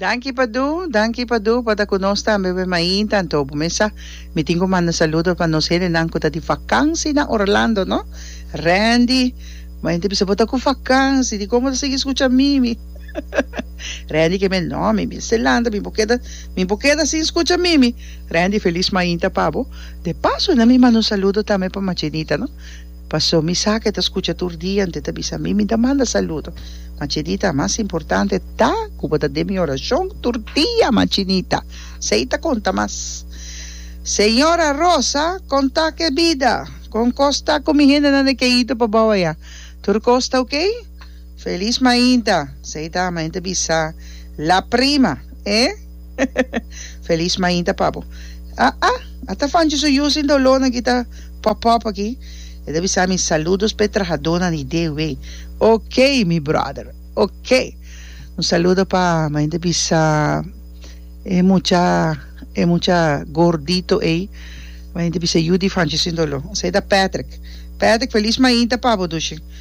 Danki Padu, danki Padu pa ta ku nos tambe pe mainta, anto bo mesa. Mi tin ku manda saludo pa nos helenan ku ta di vakansi na Orlando, no? Randy, bo henter bisa bo ta ku vakansi, dikon bo ta sigui skucha Mimi? Randy ke me, no, mi mester lanta, mi por keda, mi por keda sin skucha Mimi. Randy, felis mainta pa bo. De paso nan mi manda un saludo tambe pa Machenita, no? Paso mi sa ke ta skucha tur dia ente ta bisa mi, mi ta manda saludo, Machinita, mas importante ta ku bo ta den mi orashon tur dia, Machinita. Sei ta konta mas. Señora Rosa, kon ta ke bida? Kon kos ta ku mi hendenan e ke ido pa bou aya? Tur kos ta oke? Feliz mainta, Seita a mainta bisa la prima, e? Feliz mainta pa bo. A a, a ta fanchi su yu sin doló nan ki ta pop pop aki. E ta bisa mi saludos p'e trahadonan di DW. Ok mi brother, ok. Un saludo pa mainta bisa e mucha e mucha gordito ei, mainta bisa yu di fanchi sin doló. Seita Patrick, Patrick feliz mainta pa bo dushi.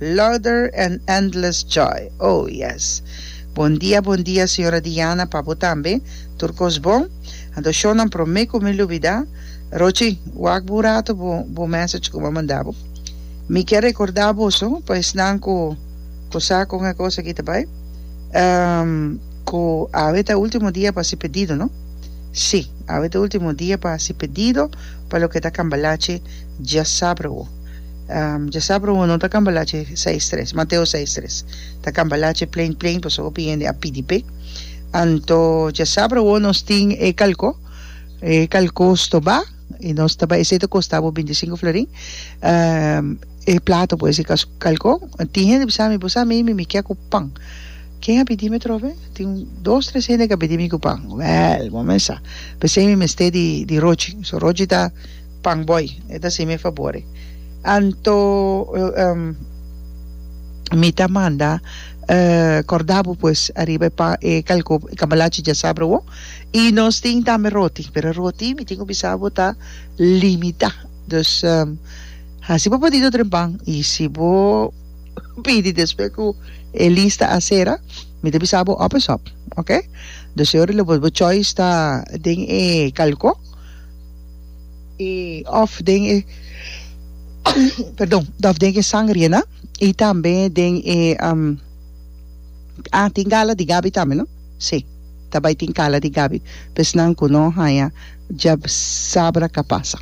Louder and endless joy oh yes Bon dia bon dia señora Diana pa bo tambe tur kos bon anto show nan prome ku mi lubida Rochi wak bo un rato bo bo message ku mi a manda bo mi kier rekorda boso pa esnan ku ku sa kon e kos aki ta bai ehm ku awe ta ultimo dia pa hasi pedido no si awe ta ultimo dia pa hasi pedido pa loke ta cambalache djasabra wo. Dja sa promo no ta cambalache seis tres Mateo seis tres ta cambalache plain plain pasobra hopi hende a pidi p'e anto dja sa promo nos tin e calco e calco stoba y nos ta bai esey ta costa bo binti cinco florin e plato pues di calco tin hende bisa mi bo sa mi mi kia cu pan ken a pidi mi atrobe tin dos tres hende cu a pidi mi cu pan wèl bo mester p'esey mi mester di rochi so rochi ta Pan boy e ta si mi fabor e. Anto mi ta manda corda bo pues ariba e pan e calco e cambalachi dja sa browo y nos tin tambe roti pero roti mi tin cu bisa bo ta limita dus hasi bo pedido dren pan y si bo pidi despues cu e lista a cera mi ta bisa bo op is op ok dus e ora lo bo choice ta den e calco. i òf den e perdon òf den e sangriena i tambe den e a tin gala di gabi tambe no si ta bai tin gala di gabi pues nan ku no haña dja sabra ka pasa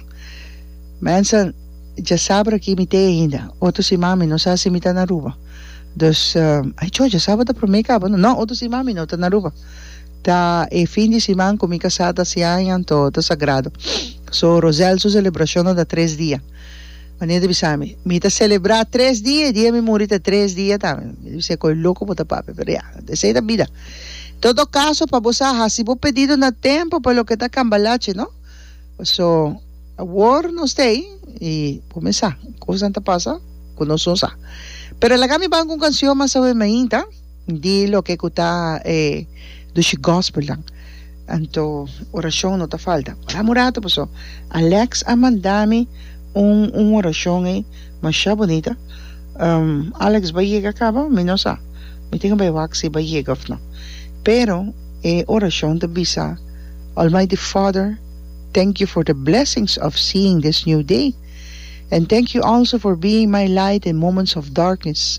mensen dja sabra aki mi te ainda otro siman mi no sa si mi ta na Aruba dus aichò dja sabra ta prome kaba no no otro siman mi no ta na Aruba. Ta e fin di siman ku mi kasá ta siá en anto ta sagrado. So Roselle su selebrashonnan ta tres dia. Mania ta bisa mi, Mi ta selebrá tres dia, e dia mi muri ta tres dia tambe. Mi ta bisa, Koe loko bo ta papia, pero ya, esei ta bida. En todo kaso, pa bo sa hasi bo pedido na tempu pa loke ta kambalachi, no? So, awor nos ta ei i bo mesa, kosnan ta pasa ku nosun sa. Pero laga mi ban ku un kansion masawema ainda. Di loke ku ta e dushi gospelnan. Anto orashon no ta falta. Ora un rato paso Alex a manda mi un un orashon ei masha bonita. Alex bai yega caba? Mi no sa. Mi tin ku bai wak si bai yega of no. Pero e orashon ta bisa, Almighty Father, thank you for the blessings of seeing this new day and thank you also for being my light in moments of darkness.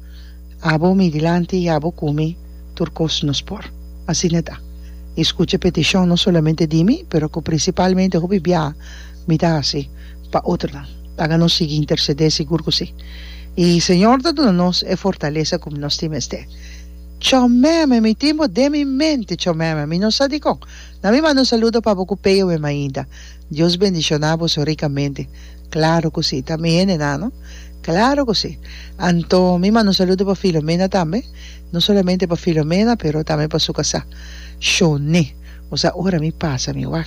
Abo mi dilanti i abo ku mi tur kos nos por. Asina ta. I skucha e petishon no solamente di mi, pero ku prinsipalmente hopi biaha mi ta hasi pa otro. Laga nos sigui intersedé, sigur ku si. I Señor ta duna nos e fortalesa ku nos tin mester. Chomeme, mi tin bo den mi mente, chomeme. Mi no sa dikon. Na mi manda un saludo pa bo ku peyo meme ainda. Dios bendishonabo so rikamente. Claro cu si, ta mi hende nan, no? Claro cu si. Anto, mi manda un saludo pa Filomena tambe, no solamente pa Filomena, pero tambe pa su casá, Shone. Cu sa ora mi pasa mi wak.